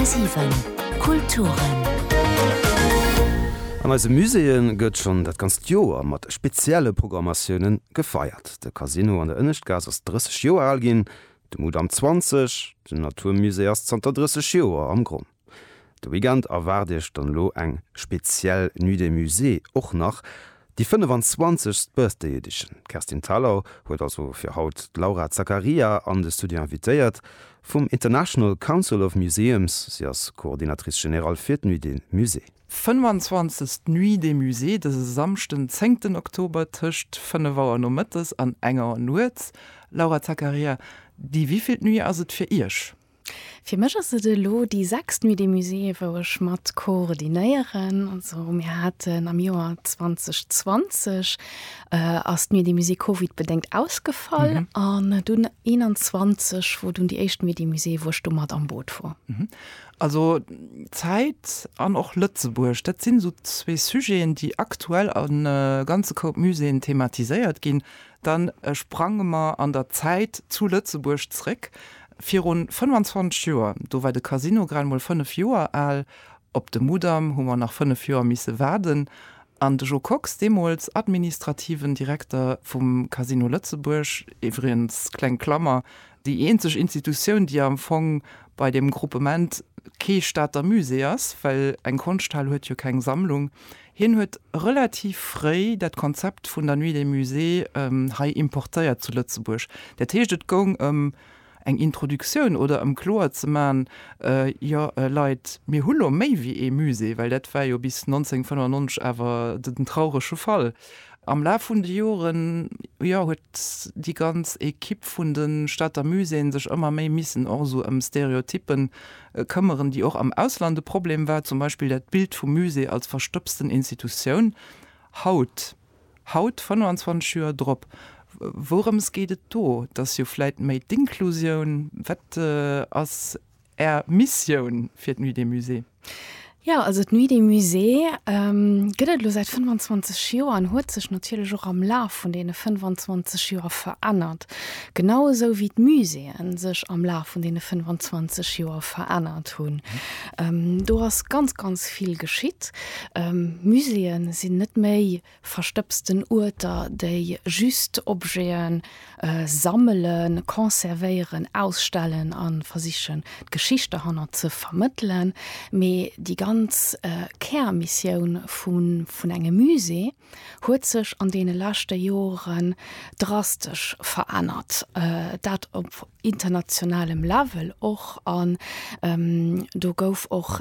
10,7 Kulturen. An eise Muséeë gëtt schonn dat ganzt Joer mat spezielle Programmatioune gefeiert. De Casino an der Ënneschtgaass ass 30 Joer al ginn, de Mudam 20. Den Naturmusée ass zanter 30 Joer am Gronn. De Weekend erwaart Iech dann elo eng speziell Nuit des Musées, och nach déi 25. Birthday Edition. D'Kerstin Thalau huet also fir haut d'Laura Zaccaria an de Studio invitéiert vum International Council of Museums. Si ass Coordinatrice Générale fir d'Nuit des Musées. 25. Nuit des Musées dëse Samschden 10. Oktober tëscht 5 Auer nomëttes an eng Auer nuets. Laura Zaccaria, déi wievilt Nuit ass et fir Iech? Fir mech ass et elo déi sechst Nuit des Musées, wou ech mat koordinéieren. Also mir haten am Joer 2020 ass d'Nuit des Musées Covid-bedéngt ausgefall an dunn 21, wou dunn déi éischt Nuit des Musées, wou ech do mat am Boot wor. Also Zäit an och Lëtzebuerg, dat sinn esou zwee Sujeten, déi aktuell a ganze Koup Muséeën thematiséiert ginn. Dann sprange mer an der Zäit zu Lëtzebuerg zréck. Virun 25 Joer, do war de Casino grad emol 5 Joer al, op de Mudam hu mer nach 5 Joer misse waarden, an de Jo Kox, deemools administrativen Direkter vum Casino Lëtzebuerg, iwwregens, kleng Klammer, déi eenzeg Institutioun, déi am Fong bei deem Gruppement kee Stater Musée ass, well eng Konschthal huet jo keng Sammlung, Hien huet relativ fréi dat Konzept vun der Nuit des Musées hei importéiert zu Lëtzebuerg. Dat heescht, et goung ëm eng Introduktioun oder ëm kloer ze man, jo Leit, mir hu lo méi wéi ee Musée, well dat war jo bis 1995 awer den traurege Fall. Am Laf vun de Joren, jo, huet. déi ganz Equipe vun de Stater Muséeën sech ëmmer méi missen och esou ëm Stereotyppen këmmeren, déi och am Ausland e Problem war, zum Beispill dat Bild vum Musée als verstopsten Institutioun. Haut, haut 25 Joer drop, wourëms geet et do? Et ass jo vläit méi d'Inklusioun. Wat ass. Är Missioun fir d'Nuit des Musées? Jo, also d'Nuit des Musées gëtt et elo säit 25 Joer an huet sech natierlech och am Laf vun deene 25 Joer verännert, genau esou wéi d'Muséeë sech am Laf vun deene 25 Joer verännert hunn. Do ass ganz, ganz vill geschitt. Muséeë sinn net méi verstëbsten Uerter, déi just Objete sammelen, conservéieren, ausstellen a versichen d'Geschicht derhannert ze vermëttelen. Mee déi ganz Kärmissioun vun engem Musée huet sech an deene leschte Jore drastesch verännert, dat op internationalem Level och, an do gouf och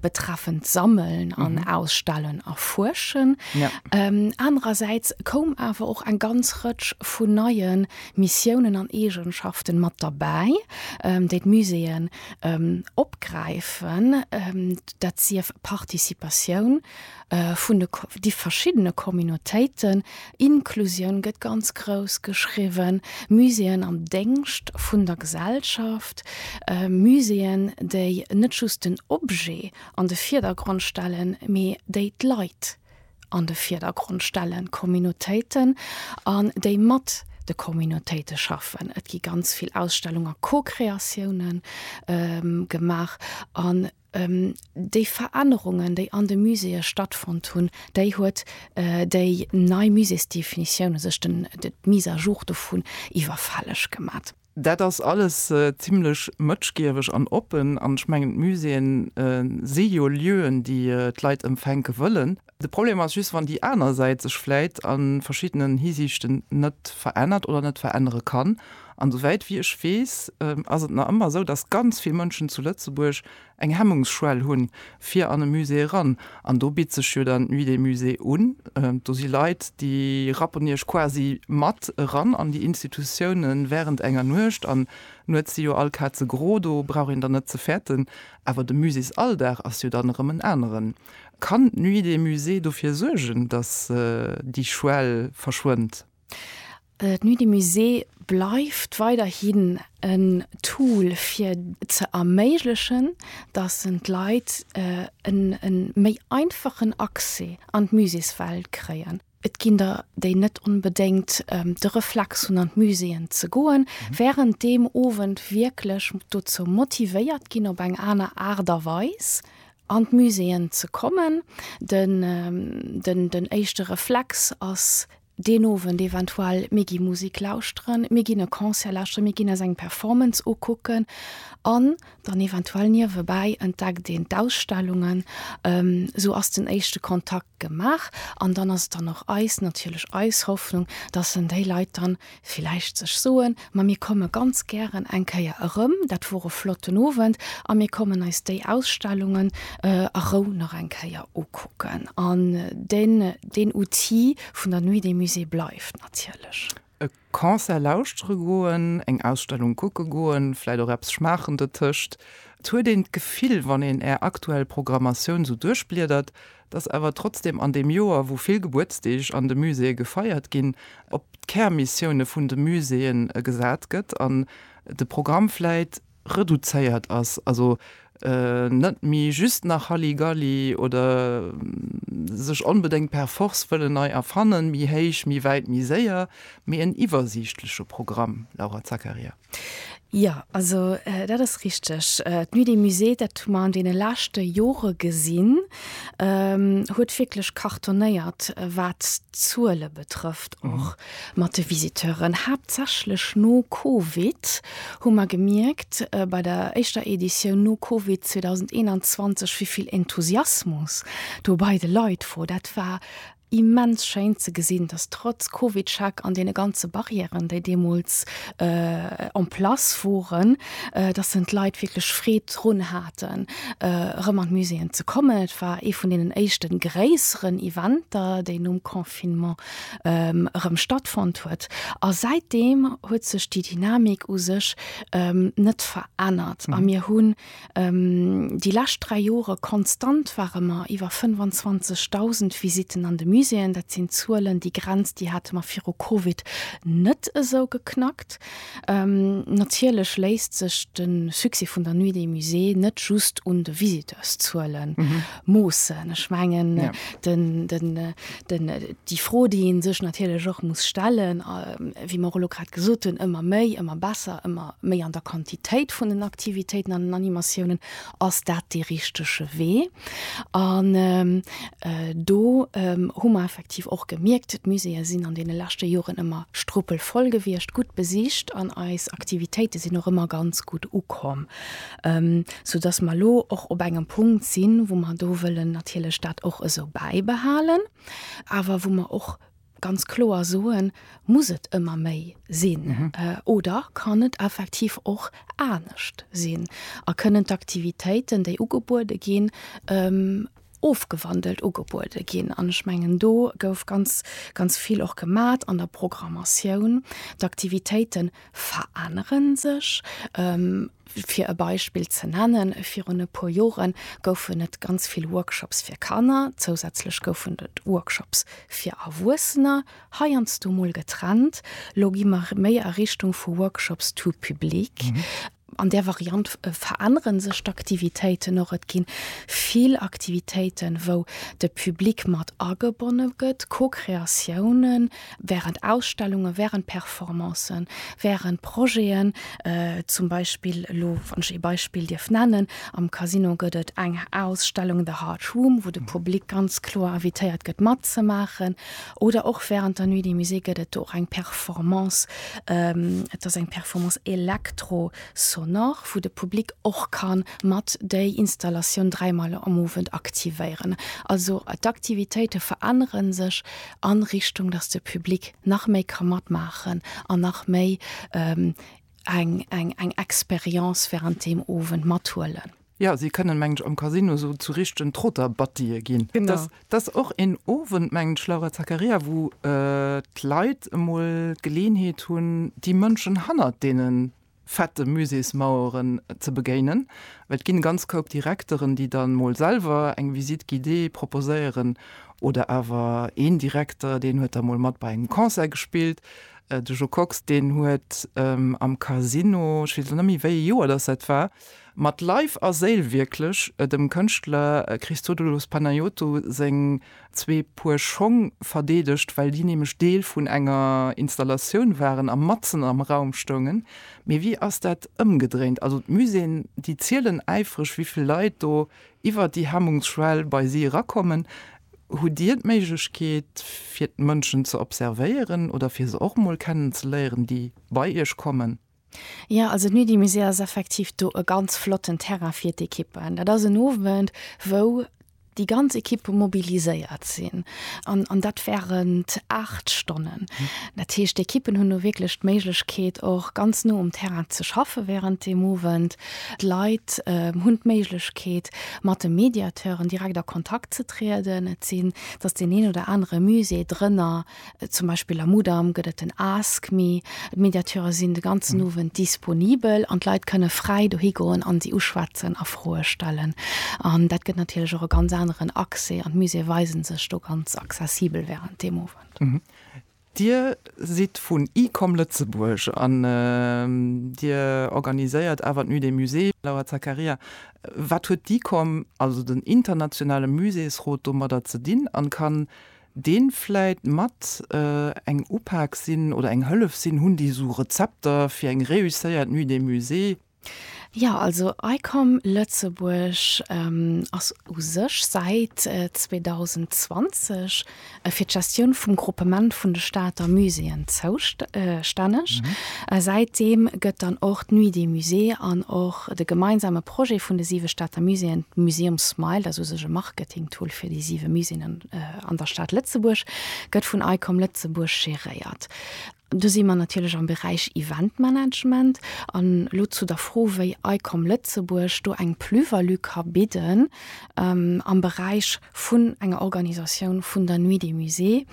betreffend Sammeln an mhm. Ausstellen erfuerschen. Ja. Ähm, andererseits koum awer och eng ganz Rëtsch vun neien Missiounen an Egenschaften mat dabei, ähm, déi d'Muséeën ähm, opgräifen, ähm, dat sief Participatioun, Vun de di verschiddene Communautéiten, Inklusioun gëtt ganz grouss geschriwwen, Muséeën am Déngscht vun der Gesellschaft, Muséeën, déi net just den Objet an de Vierdergrond stellen, mee déi d'Leit an de Vierdergrond stellen, d'Communautéiten, an déi mat de Communautéite schaffen. Et gi ganz vill Ausstellung a Co-Kreatiounen gemaach an. Déi Verännerungen, déi an de Muséeë stattfonnt hunn, déi huet déi nei Muséesdefinitioun u sech, d'Mise à jour dovun, iwwerfälleg gemat. Dat ass alles zimlech mëtschgieweg an oppen. An ech mengen, d'Muséeë si jo Lieuen, déi d'Leit empfänke wëllen. De Problem ass just, wann déi aner Säit sech vläit a verschiddenen Hisiichten net verännert oder net verännere kann. An souwäit wéi ech weess, ass et nach ëmmer esou, dass ganz vill Mënschen zu Lëtzebuerg eng Hemmungsschwell hunn, fir an e Musée eran. An do bitt sech jo dann d'Nuit des musées un. Do si Leit, déi rappen Iech quasi mat eran an déi Institutioune wärend enger Nuecht. An nuets si jo all Kaze gro, do brauch een dann net ze fäerten. Awer de Muséesalldag ass jo dann erëm en aneren. Kann d'Nuit des Musées dofir suergen, datt déi Schwell verschwënnt? D'Nuit des Musées bleift weiderhin en Tool fir ze erméiglechen, datt d'Leit e méi einfachen Accès an d'Muséeswelt kréien. Et ginn der, déi net onbedéngt de Reflex hunn an d'Muséeën ze goen, wärend deem Owend wierklech dozou motivéiert ginn, op eng aner Aart a Weis an d'Muséeën ze kommen. Den éischte Reflex ass deen Owend eventuell, mir gi Musek lauschteren, mir ginn e Concert lauschteren, mir ginn eis eng Performance ukucken an Dann eventuell niewebäi entdeckt een d'Ausstellungen, esou ass den éischte Kontakt gemaach. An dann ass et dann och eis, natierlech eis Hoffnung, dass dann déi Leit dann villäicht sech soen, ma mir komme ganz gären eng Kéier erëm, dat wor e flotten Owend a mir kommen eis déi Ausstellungen a Rou nach eng Kéier ukucken. An deen Outil vun der Nuit des Musées bleift natierlech. E Concert lauschtere goen, eng Ausstellung kucke goen, vläit och eppes schmaachen dotëscht. Et huet een d'Gefill, wann een Är aktuell Programmatioun sou duerchbliedert, dass awer trotzdem an deem Joer, wou vill Gebuertsdeeg an de Muséeë gefeiert ginn, op d'Kärmissioune vun de Muséeën gesat gëtt an de Programm vläit, reduzéiert ass, also net méi just nach Halligalli oder sech onbedéngt per Force wëllen nei erfannen, méi héich, méi wäit, méi séier, mee en iwwersiichtleche Programm, Laura Zakaria. Jo, also dat ass richteg. D'Nuit des Musées, dat hu mer an deene leschte Jore gesinn, huet wierklech cartonnéiert, wat d'Zuele betrëfft och. Mat de Visiteuren, haaptsächlech no Covid, hu mer gemierkt bei der éischter Editioun no Covid 2021, wéi vill Enthusiasmus do bei de Leit wor. Dat war immens schéin ze gesinn, dass trotz Covidcheck an deene ganze Barrièren, déi deemools en place woren, dass sen d'Leit wierklech Freed drun haten, erëm an d'Muséeën ze kommen. Et war ee vun deenen éischten gréisseren Eventer, déi nom Con. Confinement erëm stattfonnt huet. A säitdeem huet sech déi Dynamik u sech net verännert. A mir hunn déi lescht dräi Jore konstant ware mer iwwer 25.000 Visitten an de Muséeën. Dat sinn Zuelen, déi Grenz, déi hate mer viru Covid net esou geknackt. Natierlech léisst sech de Succès vun der Nuit des Musées net just un de Visiteurszuelen moossen. Ech mengen déi Fro, déi ee sech natierlech och muss stellen, wéi mer elo grad gesot hunn, ëmmer méi, ëmmer besser, ëmmer méi an der Quantitéit vun den Aktivitéiten an den Animatiounen, Ass dat dee richtege Wee? An do hu mer effektiv och gemierkt, d'Muséeë sinn an deene leschte Joren ëmmer struppelvoll gewiescht, gutt besicht an eis Aktivitéite sinn och ëmmer ganz gutt ukomm. sou dass mer elo och op engem Punkt sinn, wou mer do wëllen natierlech dat och esou bäibehalen, awer wou mer och ganz kloer soen, Muss et ëmmer méi sinn oder kann et effektiv och anescht sinn a kënnen d'Aktivitéiten, déi ugebuede ginn, ofgewandelt ugebuede ginn. An ech mengen do gouf ganz, ganz vill och gemat an der Programmatioun. D'Aktivitéite verännere sech. Fir e Beispill ze nennen, virun e puer Jore goufen et ganz vill Workshops fir Kanner, zousätzlech goufen et Workshops fir Erwuessener, heiansdo mol getrennt. Elo gi mer méi a Richtung vu Workshops tout public. An där Variant verännere sech d'Aktivitéiten och. Et gi vill Aktivitéiten, wou de Public mat agebonne gëtt, Co-Kreatiounen während Ausstellungen, während Performancen, während Projeten. Zum Beispill elo, wann ech ee Beispill dierf nennen, am Casino gëtt et eng Ausstellung The Heart Room, wou de Public ganz kloer invitéiert gëtt matzemaachen. Oder och während der Nuit des Musées gëtt et do och eng Performance. Et ass eng Performance elektro-sonore, wou de Public och ka mat déi Installatioun dräimol am Owend aktivéieren. Also d'Aktivitéite verännere sech a Richtung, datt de Public nach méi ka matmaachen an nach méi eng Experience während deem Owend mathuelen. Jo, si kënnen, mengen ech, am Casino esou zu richtegen Trotter-Buttye ginn. Genau. Dat ass och een Owend, mengen ech, Laura Zakaria, wou d'Leit emol d'Geleeënheet hunn, déi Mënschen hannert deene fette Muséesmaueren ze begéinen, well et ginn e ganz Koup Direkteren, déi dann emol selwer eng Visite guidée proposéieren oder awer een Direkter, deen huet da mol mat bei engem Concert gespillt. De Jo Kox, deen huet am Casino, ech weess elo net méi, wéi ee Joer dass dat war, Mat Leif a Séil wierklech dem Kënschtler Christodoulos Panayotou seng zwee Puer Schong verdeedegt, well déi nämlech Deel vun enger Installatioun waren a matzen am Raum stoungen. Mee wéi ass dat ëmgedréint? Also d'Muséeën, déi zielen äifreg, wéi vill Leit do iwwer déi Hemmungsschwell bei si erakommen. Hutt Dir d'Méiglechkeet, fir d'Mënschen ze observéieren oder fir se och emol kennenzeléieren, déi bei Iech kommen? Jo, also d'Nuit-du-Musée ass effektiv do e ganz flotten Terrain fir d'Ekippen. Dat ass en Owend, wou déi ganz Ekippe mobiliséiert sinn an, an dat während aacht Stonnen. Dat heescht, d'Ekippen hunn do wierklech d'Méiglechkeet, och ganz no um Terrain ze schaffen während deem Owend. D'Leit hunn d'Méiglechkeet, mat de Mediateuren direkt a Kontakt ze trieden. Et sinn, et ass deen een oder anere Musée drënner. Zum Beispill am Mudam gëtt et den Ask me. D'Mediateure sinn de ganzen Owend disponibel an d'Leit kënne fräi dohigoen an si uschwätzen a Froe stellen. An dat gëtt natierlech och e ganz aneren Accès an d'Muséeë weise sech do ganz accessibel wärend deem Owend. Dir sidd vun ICOM Lëtzebuerg an Dir organiséiert awer d'Nuit des Musées. Laura Zaccaria, wat huet d'ICOM, also den internationale Muséesrot, domadder ze dinn an kann deen vläit mat eng Upak sinn oder eng Hëllef sinn, hunn déi esou Rezepter fir eng réusséiert Nuit de Musée? Jo, also ICOM Lëtzebuerg ass u sech säit 2020 fir d'Gestioun vum Gruppement vun de Stater Muséeën zoustänneg. Säit deem gëtt dann och d'Nuit de Musée an och de gemeinsame Projet vun de siwe Stater Muséeën, d'Museumsmile, dat ass u sech e Marketingtool fir déi siwe Muséeën, An der Stad Lëtzebuerg gëtt vun ICOM Lëtzebuerg geréiert. Do si mer natierlech am Beräich Eventmanagement. An elo zu der Fro, wéi ICOM Lëtzebuerg do eng Plus-value ka bidden am Beräich vun enger Organisatioun vun der Nuit des Musées.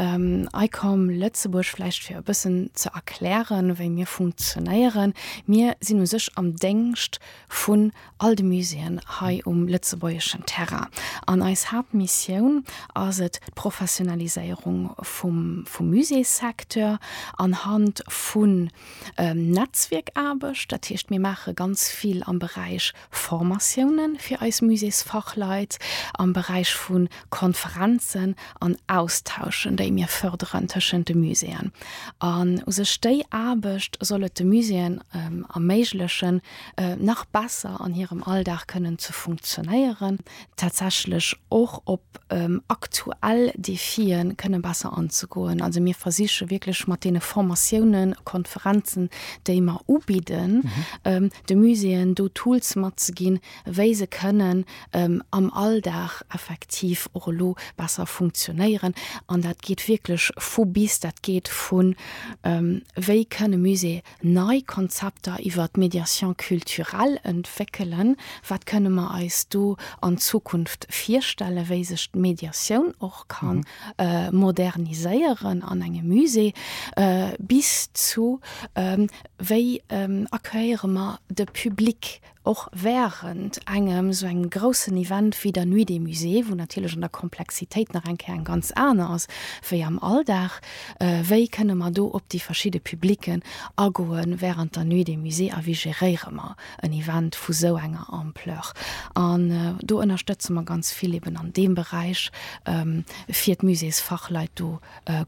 ICOM Lëtzebuerg, vläicht fir e bëssen ze erklären, wéi mir funktionéieren, Mir sinn u sech am Déngscht vun all de Muséeën hei um lëtzebuergeschen Terrain. An eis Haaptmissioun ass et, d'Professionaliséierung vum Muséessecteur anhand vun Netzwierkaarbecht, dat heescht, mir maache ganz vill am Beräich Formatioune fir eis Muséesfachleit, am Beräich vu Konferenzen an Austauschen, déi mir fërderen tëschent de Muséeën. An u sech déi Aarbecht soll et de Muséeën erméiglechen, nach besser an hirem Alldag kënnen ze funktionéieren, tatsächlech och op aktuell Defie kënne besser anzegoen. Also mir versiche wierklech mat deene Formatiounen, Konferenzen, déi mer ubidden, de Muséeën do Tools matzeginn, wéi se kënnen am Alldag effektiv och elo besser funktionéieren. An dat geet wierklech vu bis. Dat geet vu wéi kënn e Musée Nei Konzepter iwwer d'Médiation culturelle entwéckelen, wat kënne mer eis do an Zukunft virstellen, wéi sech d'Médiatioun och ka moderniséieren an engem Musée, bis zu wéi accueilliere mer de Public, Och während engem esou engem groussen Event wéi der Nuit des Musées, wou natierlech an der Komplexitéit nach eng Kéier eng ganz aner ass wéi am Alldag, wéi kënne mer do op déi verschidde Publicken agoe während der Nuit des Musées a wéi geréiere mer en Event vu esou enger Ampleur? An do ënnerstëtze mer ganz vill eben an deem Beräich, fir d'Musées-Fachleit do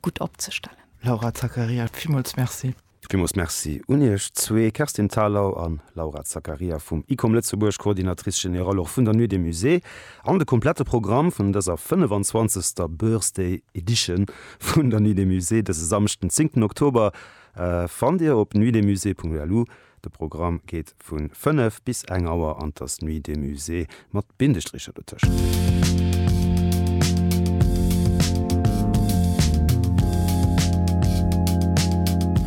gutt opzestellen. Laura Zakaria, Villmools Merci. Villmools Merci un Iech zwee, Kerstin Thalau an Laura Zaccaria vum Icom Lëtzebuerg, Coordinatrice Générale och vun der Nuit des Musées. An de komplette Programm vun dëser 25. Birthday Edition vun der Nuit des Musées dëse Samschden, 10. Oktober, fannt Dir op nuitdesmusées.lu. De Programm geet Vu 5 bis eng Auer an t'ass Nuit des Musées mat Bindestricher dotëscht.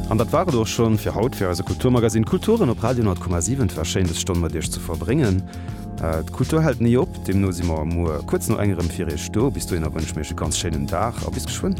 An dat war et och schonn fir haut fir eise Kulturmagazine Kulturen op Radio 10,7. Et war schéin des Stonn mat iech ze verbréngen. D'Kultur hält ni op, deemno si mer muer kuerz no enger rëm fir iech do. Bis dohinner wënschen mir iech e ganz schéinen Dag a bis geschwënn.